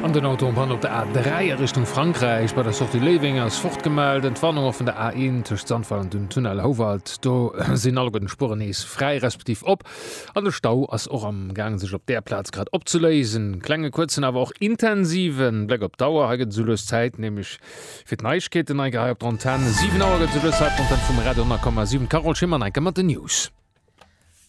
An den Auto am Panne op der A3 a Richtung Frankräich. Bei der Sortie Léiweng ass fort gemellt. Entwarnung och vun der A1 tëscht Sandweiler an dem Tunnel Houwald. Do sinn alleguer den Spueren nees fräi respektiv op an de Stau ass och am Gaang sech op där Plaz grad opzeléisen. Klenge kuerzen awer och intensive Bléck op d'Auer. Hei gëtt et esoulues Zäit nämlech fir d'Neiegkeeten hei gehei op der Antenn. 7 Auer gëtt et esoulues Zäit vum Red 100,7. D'Carole Schimmer, Neiker, mat den News.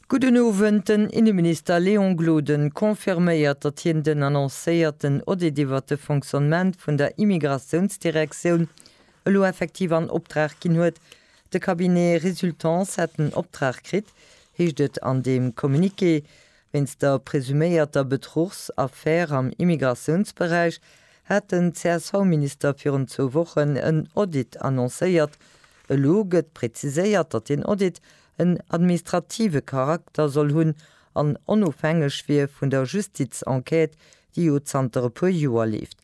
Gudden Owend. Den Inneminister Léon Gloden confirméiert, datt hien den annoncéierten Audit iwwert de Fonctionnement vun der Immigratiounsdirektioun elo effektiv an Opdrag ginn huet. De Cabinet Resultance hätt den Optrag kritt, heescht et an deem Communiqué, wéinst der presuméierter Betruchsaffär am Immigratiounsberäich hat den CSV-Minister virun zwou Wochen en Audit annoncéiert. Elo gëtt preziséiert, datt deen Audit en administrative Charakter soll hunn an onofhängeg wier vun der Justizenquête, déi jo zanter e puer Joer leeft.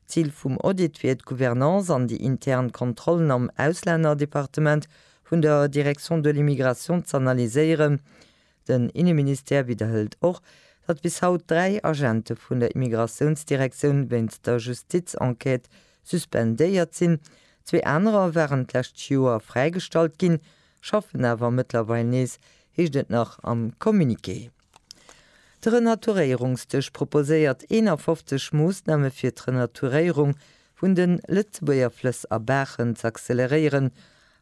D'Zil vum Audit wier d'Gouvernance an déi intern Kontrollen am Auslännerdepartement vun der Direction de l'immigration z'analyséieren. Den Inneministère widderhëlt och, datt bis haut dräi Agente vun der Immigratiounsdirektioun wéinst der Justizenquête suspendéiert sinn. Zwee anerer waren d'lescht Joer fräigestallt ginn, Schaffen awer mëttlerweil nees, heescht et nach am Communiqué. De Renaturéierungsdësch proposéiert 51 Moossname fir d'Renaturéierung vun de Lëtzebuerger Flëss a Baachen z'acceleréieren.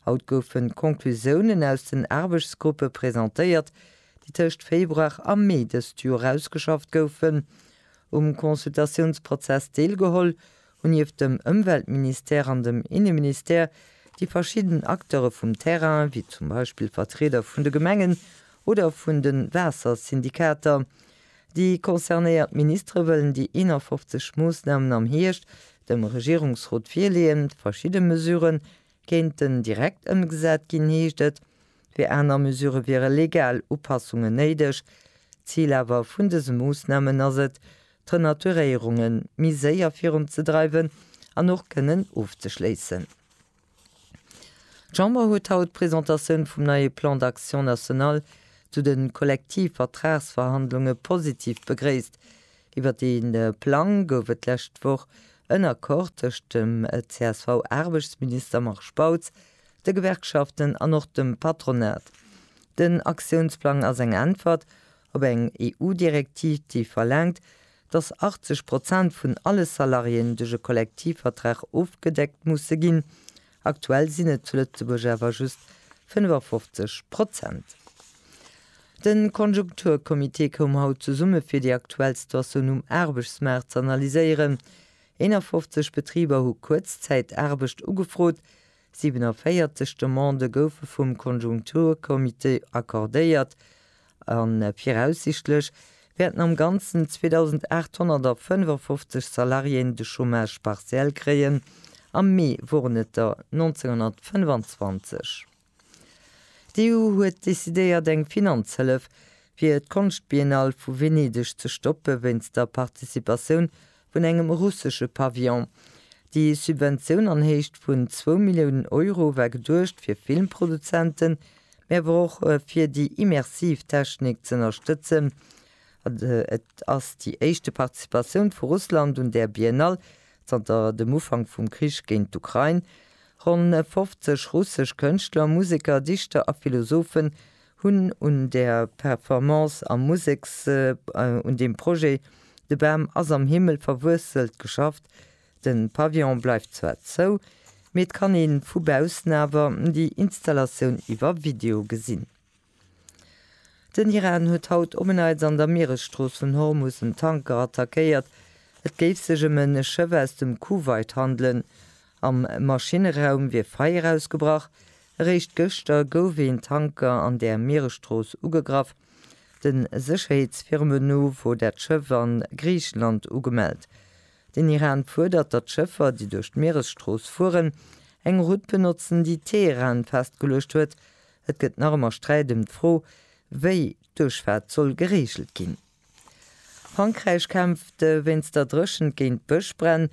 Haut goufen d'Conclusiounen aus den Aarbechtsgruppe presentéiert, déi tëscht Februar a Mee dëst Joer ausgeschafft goufen. Um Consultatiounsprozess deelgeholl hunn nieft dem Ëmweltministère an dem Inneministère déi verschidden Acteure vum Terrain, wéi zum Beispill Vertrieder vun de Gemengen oder vun de Waassersyndikater. Déi concernéiert Ministere wëllen déi 51 Moossnamen am Hierscht dem Regierungsrot virleeën. Verschidde Mesurë kéinten direkt ëmgesat ginn, heescht et, fir aner Mesurë wiere legal Upassungen néideg. D'Zil awer vun dëse Moossnamen ass et, d'Renaturéierunge méi séier virun ze dreiwen an och kënnen ofzeschléissen. D'Chamber huet haut d'Presentatioun vum neie Plan d'action national zu de Kollektivvertragsverhandlunge positiv begréisst. Iwwert dee Plang gouf et d'lescht Woch en Accord tëscht dem CSV-Aarbechtsminister Marc Spautz, de Gewerkschaften an och dem Patronat. Den Aktiounsplang ass eng Äntwert Op eng EU-Direktiv, déi verlaangt, datt 80 Prozent vun alle Salariéen duerch e Kollektivvertrag ofgedeckt musse ginn. Aktuell sinn et zu Lëtzebuerg awer just 55 Prozent. De Konjunkturcomité koum haut zesumme fir déi aktuell Situatioun um Aarbechtsmaart ze analyséieren. 51 Betriber hu Kuerzzäitaarbecht ugefrot, 47 Demandë goufe vum Konjunkturcomité accordéiert a viraussichtlech wäerten am Ganzen 2.855 Salariéen de Chômage partiel kréien, am Mee woren et der 1925. D'EU huet decidéiert eng Finanzhëllef fir d'Konschtbiennale vu Venedeg ze stoppe wéinst der Participatioun vun engem russesche Pavillon. Déi Subventioun an Héicht vun zwou Milliounen Euro war geduecht fir Filmproduzenten, mee awer och fir déi immersiv Technik z'ënnerstëtzen. Et ass déi éischte Participatioun vu Russland un där Biennale zanter dem Ufank vum Krich géint d'Ukrain. Ronn 50 russesch Kënschtler, Museker, Dichter a Philosophe Hunn un der Performance am Museks un dem Projet De Bam ass am Himmel verwuesselt geschafft. De Pavillon bleift zwar zou, mee et kann ee vu baussen awer déi Installatioun iwwer Video gesinn. Den Iran huet haut op en Neits an der Mieresstrooss vun Hormus en Tanker attackéiert. Et géif sech ëm e Schëff aus dem Kuwait handelen. Am Maschinneraum wier Feier ausgebrach. Eréischt gëschter gouf een Tanker an der Mieresstrooss ugegraff. De Sécherheetsfirme no wor dat Schëff a Griichenland ugemellt. Den Iran fuerdert, datt d'Schëffer, déi duerch d'Mieresstrooss fueren, eng Route benotzen, déi Teheran festgeluecht huet. Et gëtt nach ëmmer Sträit ëm d'Fro, wéi d'Duerchfaart soll gereegelt ginn. Frankräich kämpft wéinst der Dréchent géint d'Bëschbränn.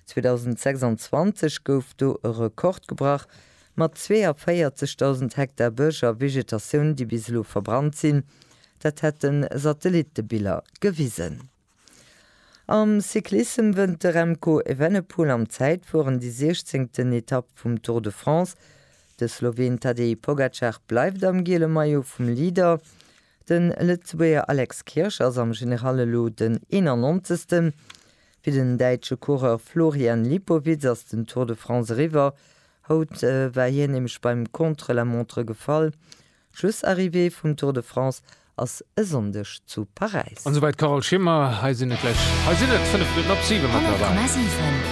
2026 gouf do e Rekord gebrach, mat 42.000 Hektar Bësch a Vegetatioun, déi bis elo verbrannt sinn. Dat hätte Satellittebiller gewisen. Am Cyclissem wënnt de Remco Evenepoel am Zäitfueren déi siechzéngten Etapp vum Tour de France. De Sloween Tadej Pogacar bleift am giele Maillot vum Leader. De Lëtzebuerger Alex Kirsch ass am General elo den 91. Fir den däitsche Coureur Florian Lipowitz ass den Tour de France eriwwer. Haut war hien nämlech beim Contre-la-montre gefall. D'Schlussarrivée vum Tour de France ass e Sonndeg zu Paräis. An esouwäit d'Carole Schimmer. Hei sinn et gläich, hei sinn et 5 Minutten op 7 méttlerweil.